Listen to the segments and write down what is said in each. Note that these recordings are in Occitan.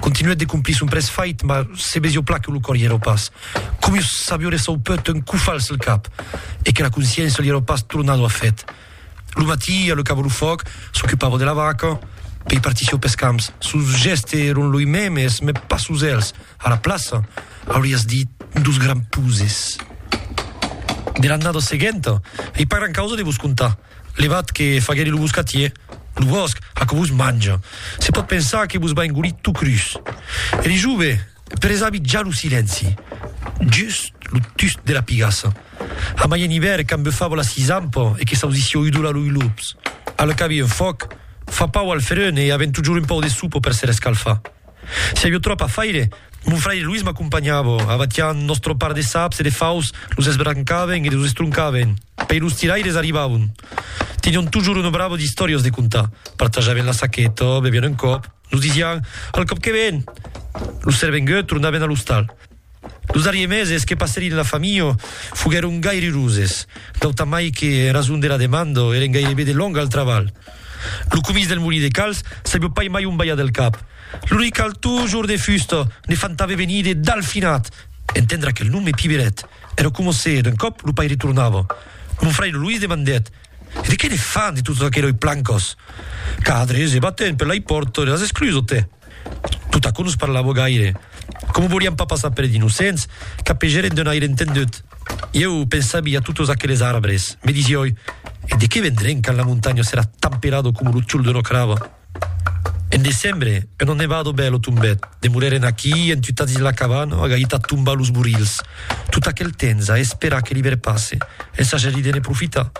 Continuèt de complir son près fait, mas se besió plan que lo còr i èra pas comius s'aviore sau pèt un cofal sul cap e que la consciéncia li èra pas tornado a fait. Lo matí, a lo cabo lo fòc, s'ocupava de la vaca, pei partissió pes camps. Sos gèste èron loi memes, mes pas sos èls. A la plaça, aurias dit, dos grands puses. De l'annada seguenta, ei pas gran causa de vos contar. Levat que faguèri lo boscatier, lo bòsc, aquò vos manja. Se pòt pensar que vos va engolir tot crus. E li jove, presami ja lo silenci. Just lo tust de la pigassa. Amai en ivèrn quand bufava la sisampa e que s'ausissi oidolar lo ilops. Al cabi un fòc fa pau al ferun e avèm totjorn un pòu de sopa per se rescalfar. Si avió tròp a faire, mon fraire Luis m'acompanhava, abatián nòstro part de saps e de faus, los esbrancàvem e los estroncàvem, pei los tiraires arribavon. Tenión tujor una brava d'istòrias de contar, partajàvem la saqueta, bevián un còp, nos disián, al còp que ven! Los servenguts tornaven a l'ostal. Los darriers meses que passèri en la familha foguèron gaireroses, d'autamai que, en rason de la demanda, èren gairebe de long al trabalh. Lo comís del molí de calç sabió pas mai on balhar del cap. Lo noi cal tujor de fusta ne fantave venir de Dalfinat, entendre aquel nom me piberet. Èra coma se, d'un còp, lo paire tornava. Mon fraire Luís demandèt, E de qué ne fan, de totas aqueròi plancas? Cadres e batent per lai pòrta de las esclusas, tè! Tot aquò nos parlava gaire. Coma volián pas passar per d'innocents, capegèren d'un aire entendut. Ieu pensavi a totes aqueles arbres. Me disioi, e de qué vendrèn quand la montanha serà tamperada coma lo tiol d'una crava? En decembre, una nevada bèla tombèt. Demorèren aquí, entutats dins la cabana, agahits a tombar los borilhs. Tot aquel temps a esperar que l'ivèrn passe, ensajadidene profitar.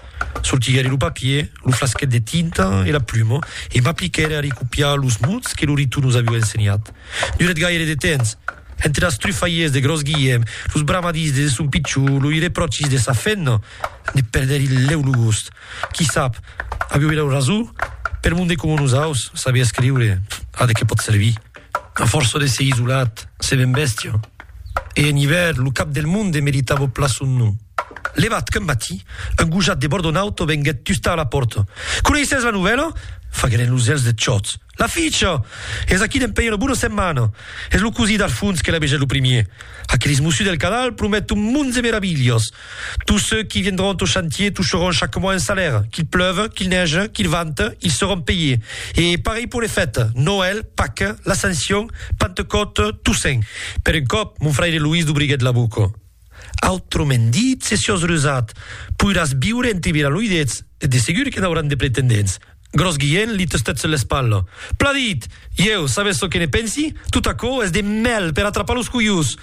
Sortiguère lo papier, lo flasquet de tinta e la pluma e m'apliquère a recopiar los mots que Lorito nos aviá ensenhat. Durèt gaire de temps. Entre las trufalhiers de Gròs Guilhèm, los bramadís de son pichon, loi repròchis de sa femna, ne perdèri lèu lo gost. Qui sap? Aviá era rasó? Per monde coma nosaus, saber escriure, a de qué pòt servir? A fòrça de ser isolat, se ven bèstia. E en ivèrn, lo cap del monde meritava plan son nom. Levat qu'un matí, un gojat de Bordonauto venguèt tustar a la pòrta. Coneissètz la novèla? faguèren los elhs deth chòt. La ficha! Es aquí dempèi una bona setmana! Es lo cosí d'Arfons que la vegèt lo primier. Aqueles mossus del Cadal promèt un mond de meravilhas. Tous ceux qui viendront au chantier toucheront chaque mois un salaire. Qu'il pleuve, qu'il neige, qu'il vente, ils seront payés. E pareilh pour les fètes, Noël, Paques, l'Ascension, Pentecòte, Toussaint. Per un còp, mon fraire Loís dubriguèt la boca. Autrement dit, se siós rusat, poiràs viure entre viraloidets, e de segur que n'auràn de pretendents. Gròs Guilhèn li tustèt sus l'espatla. Plan dit! Ieu, sabètz çò que ne pensi? Tot aquò es de mèl per atrapar los coiós!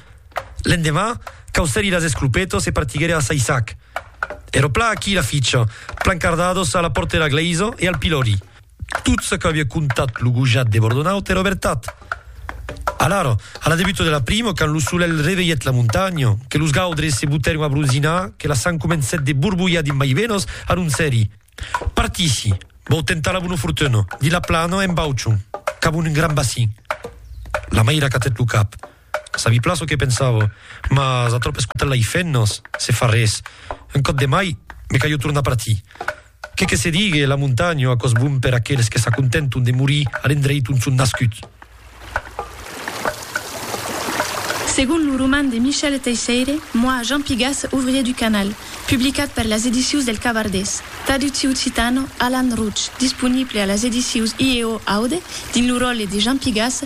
L'endemà, causèri las esclopetas e partiguèri a Saissac. Èra plan aquí la ficha, plancardados a la pòrta de la glèisa e al pilòri. Tot çò qu'aviá contat lo gojat de Bordonaut èra vertat. Alara, a la debuta de l'aprimo, quand lo solelh revelhèt la montanha, que los gaudres se botèron a bronzinar, que la sang comencèt de borbolhar dins mai venas, anoncèri, Partissi, vau tentar la bona fortuna, de la plana en bauçon, cap a un gran bacin. La maira acatèt lo cap. Sabi plan çò que pensava, mas a tròp escotar-la-i fent-nos se far res. Un còp de mai, me calho tornar partir. Qué que se digue, la montanha a còs bon per aqueles que s'acontenton de morir a l'endreit ont son nascuts. Segon lo roman de Michel Teisseire, Moi, Jean Pigas, ouvrier du canal, publicat per las edicius del Cavardés, traducciu occitano, Alan Rouch, disponible a las edicius IEO Aude dins lo ròtle de Jean Pigas,